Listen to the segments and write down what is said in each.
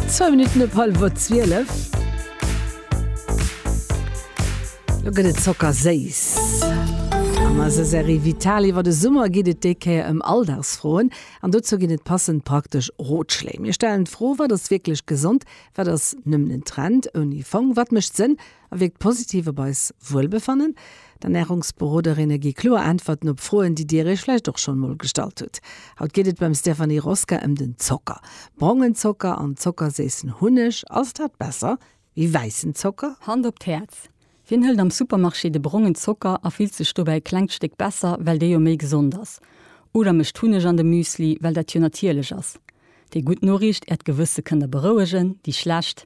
Zwou Minutten op hallwer zwielef. Lo gëtt et zockerséiss. An eiser Serie Vital iwwer de Summer geet et déi Kéier ëm Alldagsfroen. An dozou ginn et passend praktesch Rotschléi. Mir stellen d'Fro, Wat ass wierklech gesond? Wat ass nëmmen en Trend ouni Fong? Wat mécht Sënn a wierkt positiv op eis Wuelbefannen. D'Ernärungsberoderinne gi kloer Äntwerten op Froen, déi Dir Iech vläicht och schonn emol gestallt hutt. Haut geet et beim Stéphanie Rosca ëm den Zocker. Brongen Zocker an zockerséissen Hunneg, ass dat besser wéi wäissen Zocker? Hand op d'Häerz, wien hëlt am Supermarché de brongen Zocker a fillt sech dobäi e klengt Stéck besser, well dee jo méi gesond ass? Oder mëscht Hunneg an de Müsli, well dat jo natierlech ass? Déi gutt Noriicht, Äert Gewësse kënnt Der berouegen, déi schlecht,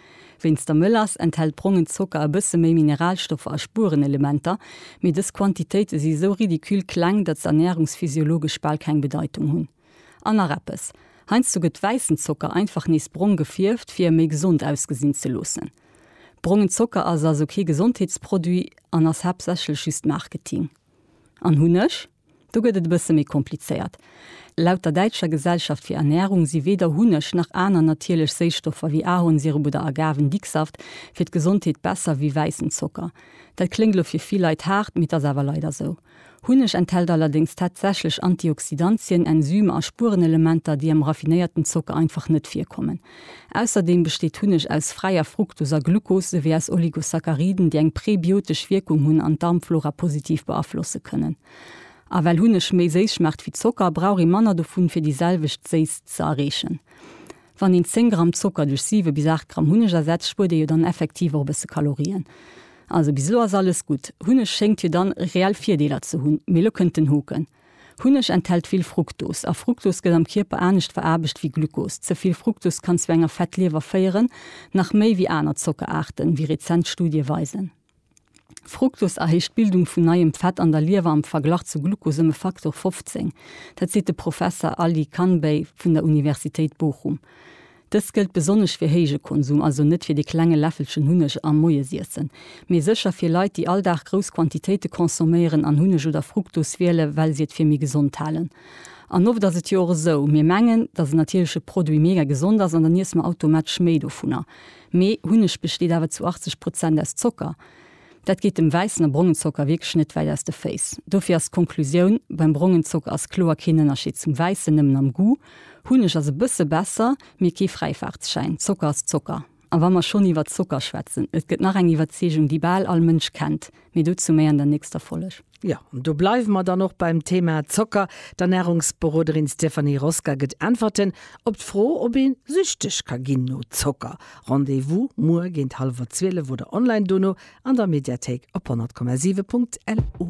Wéinst der Mëllass enthält brongen Zocker e bësse méi Mineralstoffer a Spuerenelementer, mee dës Quantitéite si sou ridicule kleng, datt se ernärungsphysiologesch bal keng Bedeitung hunn. An nach eppes, heiansdo gëtt wäissen Zocker einfach nees brong gefierft, fir e méi gesond ausgesinn ze loossen. Brongen Zocker ass also kee Gesondheetsproduit an ass haaptsächlech just Marketing. An Hunneg? Do gëtt et e bësse méi komplizéiert. Laut der Däitscher Gesellschaft fir Ernährung si weder Hunneg nach aner natierlech Séisstoffer wéi Ahornsirup oder Agavendicksaft fir d'Gesondheet besser wéi wäissen Zocker. Dat kléngt lo fir vill Leit haart, mee et ass awer leider sou. Hunneg enthält allerdéngs tatsächlech Antioxidantien, Enzymer a Spurenelementer, déi am raffinéierten Zocker einfach net virkommen. Ausserdeem besteet Hunneg aus fräier Fruktos a Glucose souwéi aus Oligosacchariden, déi eng präbiotesch Wierkung hunn an d'Darmflora positiv beaflosse kënnen. A well Hunneg méi séiss schmaacht wéi Zocker, brauch ee manner dovun, fir déi selwecht Séisst ze erreechen. Wann een 10 Gramm Zocker duerch 7 bis 8 Gramm Hunneg ersetzt, spuert ee jo dann effektiv och e bësse Kalorien. Also bis elo ass alles gutt. Hunneg schéngt jo dann reell Virdeeler ze hunn. Mee elo kënnt den Hoken. Hunneg enthält vill Fruktos, a Fruktos gëtt am Kierper anescht veraarbecht wéi Glukos. Ze vill Fruktos kann zu enger Fettliewer féieren, nach méi wéi aner Zockeraarten, wéi rezent Studie weisen. Fruktos erhéicht d'Bildung vun neiem Fett an der Liewer am Verglach zu Glukos ëm e Faktor 15. Dat seet de Professer Ali Kanbey vun der Universitéit Bochum. Dëst gëllt besonnesch fir héije Konsum, also net fir de klenge Läffelchen Hunneg am Moiesiessen, mee sécher fir Leit, déi all Dag grouss Quantitéite consomméieren an Hunneg oder Fructose wielen, well si et fir méi gesond halen. An oft ass et jo och esou, mir mengen, dass en natierleche Produit mega gesond ass an dann iesse mer automatesch méi dovunner. Mee Hunneg besteet awer zu 80 Prozent aus Zocker. Dat geet dem wäissen a brongen Zocker wierklech net wäit aus de Féiss. Dofir ass d'Konklusioun, Beim brongen Zocker ass kloer keen Ënnerscheed zum wäissen, nëmmen am Goût. Hunneg ass e bësse besser, mee kee Fräifaartsschäin. Zocker ass Zocker. A wa mer schonn iwwert Zocker schwätzen, et gëtt nach eng Iwwerzeegung, déi bal all Mënsch kennt, mee dozou méi an der nächster Folg. Jo, an do bleiwe mer dann och beim Thema Zocker. D'Ernärungsberoderin Stéphanie Rosca gëtt Äntwerten op d'Fro, ob ee süchteg ka ginn no Zocker. Rendez-vous muer géint hallwer zwielef oder online dono an der Mediathéik op 100,7.lu.